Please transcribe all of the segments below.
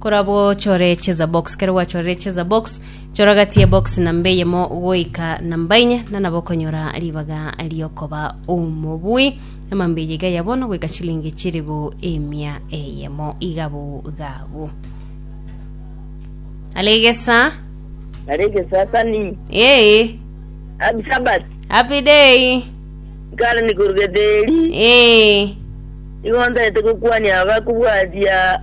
Korabwo ochore cheza box. Kero gwachorire cheza box, chora gati ye box namba eyemo goika namba inye, na nabo okonyora ribaga riokoba omobui. Emambe eye iga ya bono goika chilingi chiribu emia eyemo. Iga bogabo. Alegesa. Narege sasa ni Ee, Happy Sabbath. happy day. Nkare nikorugete eri. Ee, Igo ntaete gokwania abakobwatia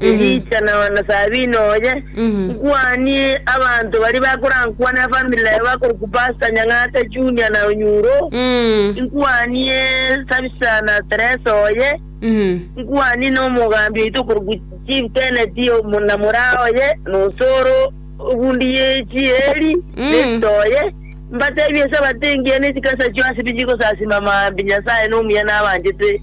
Elisha na onasaabini oye, nkwanie abanto baria bakorankwane efamili yaye bakorokwa Pasta Nyang'ata Junia na Onyuro, nkwanie Sabisa na Teresa oye, nkwanie na omogambi oito okorokwa Chief Tenet na moraa oye, na osore obundi ye chieri, Nesita oye, mbateebie Esabato engiya ne chikasachio ase bichikosasima maambia Nyasaye nomuya nabanchete.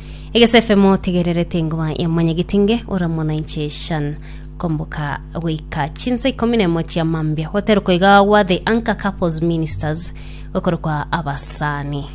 egesefemo tegererete engoma ya mwanyagitinge oramo na inche shan komboka goika chinsa ikomi na emo chia mambia gwaterokwa iga gwa the anchor couples ministers gokorokwa abasani